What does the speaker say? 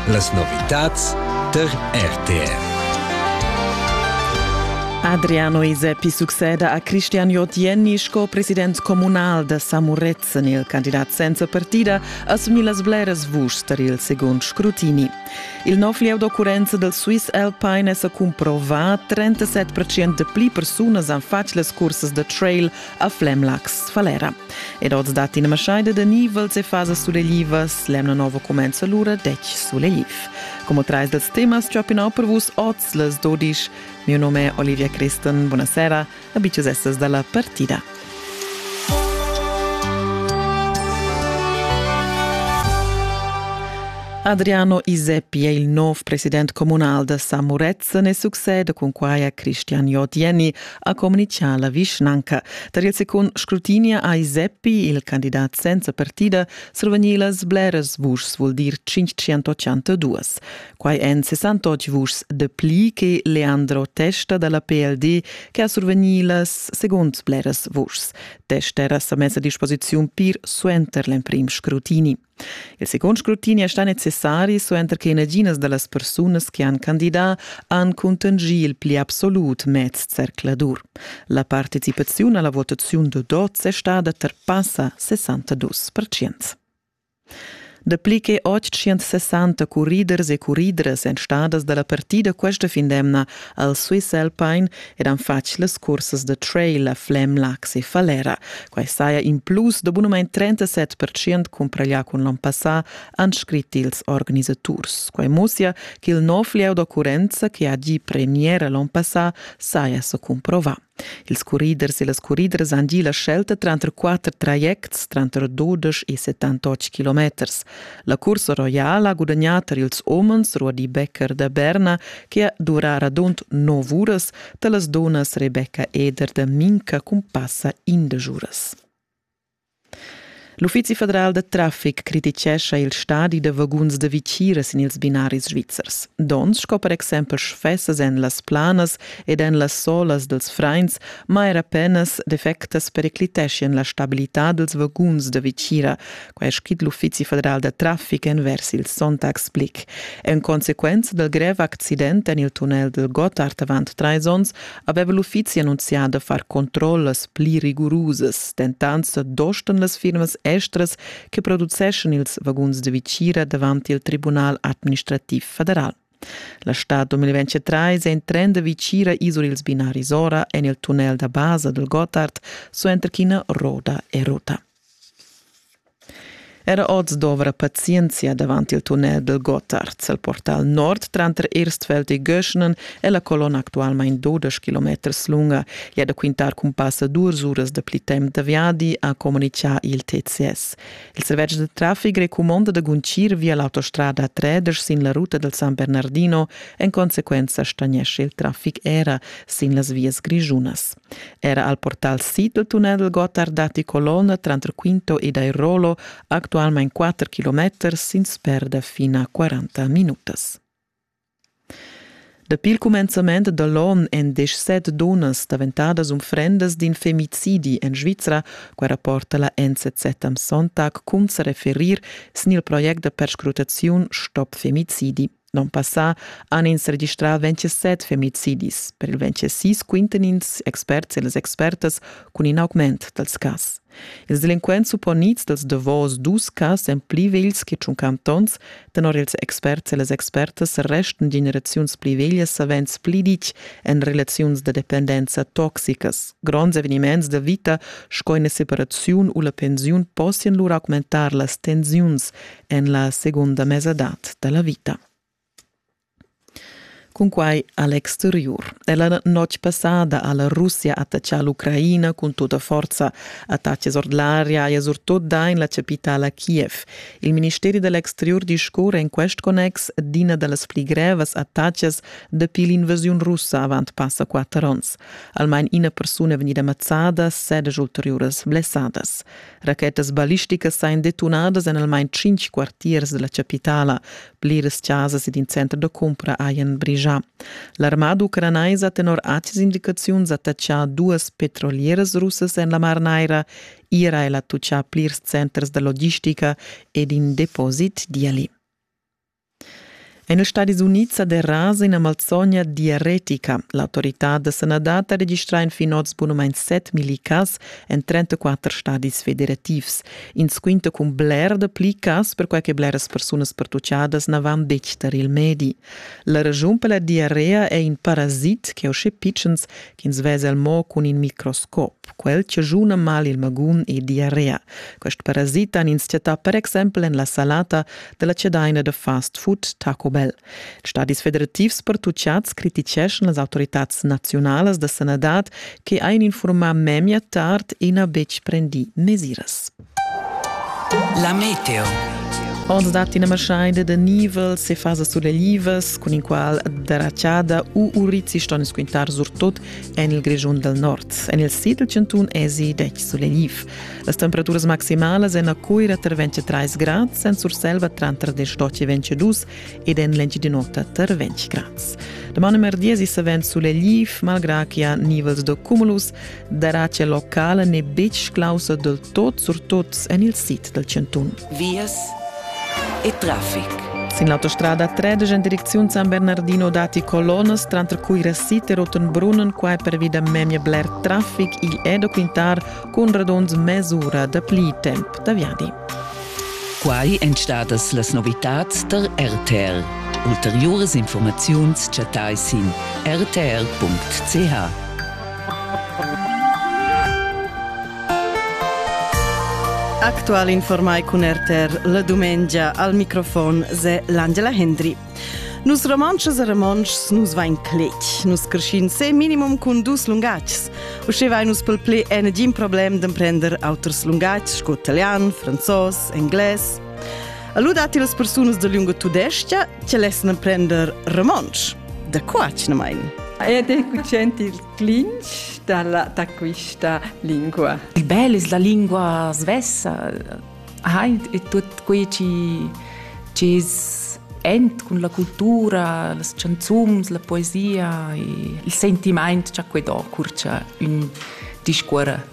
Las novitads tar RTR. Adriano Isepi succeda a Cristian Jotjenni sco president communal da Samuretzen. Il candidat senza partida assumi las bleras vuschs tar il segund scrutini. Il nov lieu d'occurrenza del Swiss Alpine è sa cumprovà. 37% de pli persunas han fatg las cursas da trail a Flemlax Falera. Ed oz dat ina maschaida da nivels e fasas suleglivas, l'emna nova comenza l'ura dec sulegliv. Come trais dels temas ciapinau per vus oz les dodisch, mio nome è Olivia Christen, buonasera, abitches essas dalla partida. Adriano Iseppi è il nov president comunal da Samurez Se ne succede cun quaia Christian Jodieni ha communichà la vischnanca. Tar il secund scrutinia ha Iseppi, il candidat senza partida, survegnì las bleras vuschs, vuol dir 582. Quai èn 68 vuschs de pli che Leandro Testa dalla PLD che ha survegnì las seconds bleras vuschs. Testa era sa messa a disposiziun pir suenter l'emprim scrutini. Il secund scrutini è stà necessari suenter che naginas da las persunas che han candidà han cuntanschì il pli absolut mez zercladur. La participaziun alla votaziun da dots è stada tar passa 62 percent. Dapli che 860 curriders e curridras èn stadas da la partida questa fin d'emna al Swiss Alpine ed han fatg las cursas da trail a Flem, Lax e Falera. Quai saja in plus da bunamain 37% cumpraglià cun l'on passà, han scrit ils organisaturs. Quai mussia ch'il nov lieu d'occurrenza che ha gì premiera l'on passà saja sa cumprovà. Ils corriders e las corriders han gì la scelta tranter quatter trajects, tranter 12 e 78 km. La cursa roiala ha gudagnà tar ils homens Ruadi Becker da Berna che ha durà radund nov uras, tar las dunnas Rebecca Eder da Minca cumpassa indesch uras. L'Uffizi federal da traffic criticescha il stadi da vaguns da vicira sin ils binaris svizzers. Donns sco per exempel sfessas en las planas ed en las solas dels frains, ma era penas defectas pericliteschien la stabilità dels vaguns da vicira, Quai è scrit l'Uffizi federal da traffic envers il Sonntagsblick. En consequenza dal grev accident en il tunnel del Gotthard avant trais onns aveva l'uffizi annunzià da far controllas pli rigurusas. Dentant dostan las firmas estras che produceschan ils vaguns de vicira davant il Tribunal administrativ federal. La stad 2023 è in trend da vicira isur ils binaris ora en il tunnel da basa del Gotthard suenter ch'ina roda è rota. Era oz dovra pazienzia davant il tunnel dal Gottard el portal nord tranter Erstfeld e Göschnen e la colonna actualmain dudesch kilometers lunga è da quintar cun passa duas uras da pli temp da viadi, ha communitgà il TCS. Il servetsch da traffic recumonda da guntgir via l'autostrada 3 sin la ruta dal San Bernardino, en consequenza stagnescha il traffic era sin las vias grischunas. Era al portal sid del tunnel Gotthard datti colonna tranter Quinto ed Airolo, actualmein 4 km sin sperda fin a 40 minutas. Dapi il cumenzament dall'onn èn deschset dunnas daventadas unfrendas d'in femicidi en Svizra, quai rapporta la NZZ am Sonntag cun sa referir sin il project da perscrutaziun Stopp femicidi. L'on passà han ins registrà 27 femicidis. Per il 26 quintan ins experts e las expertas cun in augment dals cas. Ils delinquents supponids dals davos dus cas èn pli vegls che tschun cantons. Tenor ils experts e las expertas restan generaziuns pli veglias savens pli ditg en relaziuns da dependenza toxicas. Gronds eveniments da vita sco ina separaziun u la pensiun possian lur augmentar las tensiuns en la segunda mesadad da la vita. Cunquai a l'exteriur. È la notg passada ha la Russia attaccà l'Ucraina cun tutta forza attacchi ord l'aria e surtut da in la capitala Kiev. Il ministeri dell'exterior discurre in quest connex d'ina da las pli grevas attacches dapi l'invasiun russa avant passa quatter onns. Almain ina persuna è vegnida ammazzada, sedici ulteriuras blessadas. Rachetas ballisticas sain detunadas en almain tschinch quartiers da la chapitala. Pliras chasas ed in center da cumpra hajan brigià. L'armada ucranaisa tenor acas indicaziuns attachà duas petrolieras russas en la Mar Naira. Ira è la tuchà plirs centers da logistica ed in deposit di ali. En ils Stadis Unids sa derasa ina malsogna diaretica. L'autoritad da sanadad ha registrà fin oz bunamain 7 milli cas en 34 stadis federativs. Ins quinta cun bler dapli cas perquai che bleras persunas pertutgadas na van detg tar il medi. La raschun per la diarea è in parasit che uschè pitschens ch'ins vesel mo cun in microscop. Quel chaschuna mal il magun e diarrea. Quest parasit han ins chattà per exempel en la salata della cedaina de fast food Taco Bell. Stadis federativs pertuchads criticeschan las autoritads naziunalas da sanadad che ein informar memia tard e na betg prendì mesiras. La meteo. Oz dat ina maschaida da nivel se fasas sulelivas cun in qual derachada u urizi ston squintar surtut en il Grischun del Nord. En il sid del cantun esi 10 suleliv. Las temperaturas maximalas en a Coira tra 23 grad, en Surselva tra 32 e 22 ed en l'Engiadinota tra 20 grad. Domani merdi si savent suleliv, malgrà che ha nivels de cumulus, darà che locala n'è betg clausa dal tot surtots en il sit dal Cantun. Vias e traffic. Sin l'autostrada 13 en direcziun San Bernardino datti colonas, tranter cui Rassit e Rotenbrunnen, quai pervi da memia bler traffic. Igl è da quintar cun radunds mesura dapli temp da viadi. Quai èn stadas las novitads tar RTL. Ulteriuras informaziuns chattai sin rtl.ch. Actual informai cun RTR la dumengia al microfon se l'Angela Hendry. Nus romontschas e romontschs nus vain cletg. Nus creschin se minimum cun dus lungatgs. Usche vai nus pel ple en gin problem d'emprender auters lungatgs sco italian, franzos, engles. Allora dati las persunas da lunga tudestia che lessano prender romansch. Da qua ce ne mein? Ed è cucent il clinch da questa lingua. Il bello è la lingua svessa. E tutto quello che è con la cultura, le canzoni, la poesia, il sentimento che ha qui dopo un discorso.